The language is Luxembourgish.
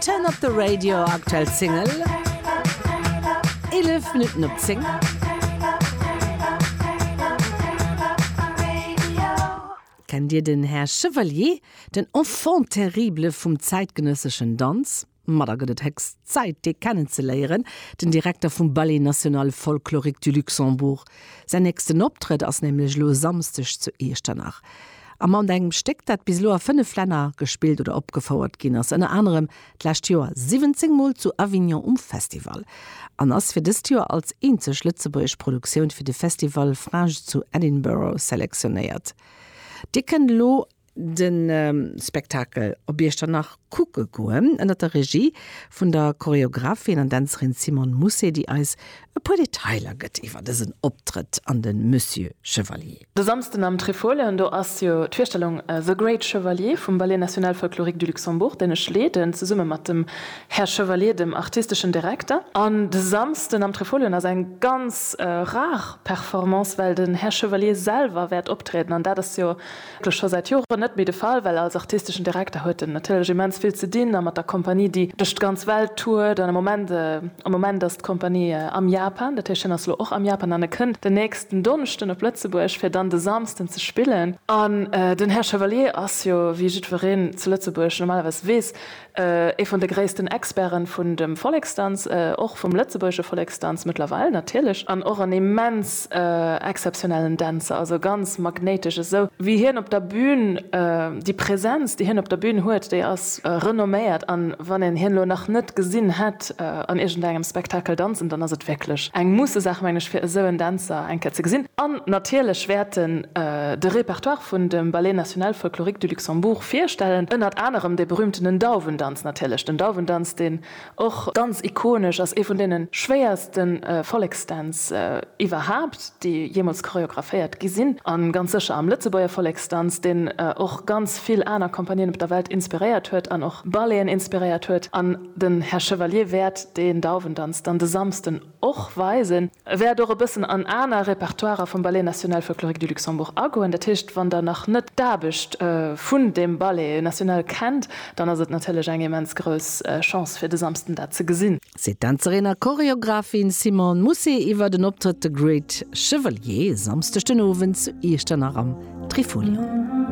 Turn up the radio, aktuell Single, 11 Minutten op 10. Kennt Dir den Här Chevalier, den Enfant terrible vum zäitgenësseschen Danz? Ma da gëtt et héchst Zäit, dee kennenzeléieren, den Direkter vum Ballet National Folklorique du Luxembourg, Säin nächsten Optrëtt ass nämlech elo e Samsdeg zu Iechternach. A mat engem Stéck, dat bis elo a fënnef Länner gespillt oder opgefouert ginn ass, ënner anerem d'lescht Joer 17 Mol zu Avignon um Festival, an ass fir dëst Joer als eenzeg lëtzebuergesch Produktioun fir de Festival Fringe zu Edinburgh selektionéiert. Dir kënnt elo de Spektakel op Iechternach kucke goen, ënner der Regie vun der Choreographin an Dänzerin Simone Mousset, déi eis e puer Detailer gëtt iwwer dësen Optrëtt an de Monsieur Chevalier. De Samsden am Trifolion, do ass jo d'Virstellung The Great Chevalier vum Ballet National Folklorique du Luxembourg, deen ech leeden, zesumme mat dem Här Chevalier, dem artisteschen Direkter. An de Samsden am Trifolion ass eng ganz rar Performance, well den Här Chevalier selwer wäert optrieden, an dat ass jo, Dat ass scho säit Joren net méi de Fall, well als artisteschen Direkter huet en natierlech immens vill ze dinn a mat der Kompanie, déi duerch d'ganz Welt tourt. Am Moment, am Moment ass d'Kompanie am Japan, dat heescht hien ass elo och am Japan an e kënnt den nächsten Donneschden op Lëtzebuerg, fir dann de Samsden ze spillen. An den Här Chevalier ass jo, wéi jiddwereen zu Lëtzebuerg normalerweis weess, Ee vun de gréissten Experten vun dem Volleksdanz, och vum lëtzebuergesche Volleksdanz mëttlerweil natierlech, an och en immens exzeptionellen Dänzer, also ganz magnéitesch, esou wéi hien op der Bühn, déi Präsenz déi hien op der Bühn huet, déi ass renomméiert, an wann een hien elo nach net gesinn hätt, Gast an iergendengem Spektakel danzen, dann ass et wierklech eng Musse-Saach, meng ech, fir esou en Dänzer eng Kéier ze gesinn. An natierlech wäerten de Repertoire vun dem Ballet National Folklorique du Luxembourg virstellen, ënnert anerem dee berühmtenen Dauwendanz natierlech, den Dauwendanz, deen och ganz ikonesch ass, ee vun deene schwéierste Volleksdänz iwwerhaapt, déi jeemools choreographéiert gi sinn, a ganz sécher am Lëtzebuerger Volleksdanz, deen och ganz vill aner Compagnien op der Welt inspiréiert huet an och Balleten inspiréiert huet. An. Den Här Chevalier wäert deen Dauwendanz dann de Samsden och weisen. E wäert och e bëssen an aner Repertoirer vum Ballet National Folklorique du Luxembourg agoen. Dat heescht, wann Der nach net d'Aarbecht vun deem Ballet National kennt, dann ass et natierlech eng immens grouss Chance, fir de Samsden dat ze gesinn. Seet d'Dänzerin a Choreographin Simone Mousset iwwer den Optrëtt The Great Chevalier e Samsdeg den Owend zu Iechternach am Trifolion.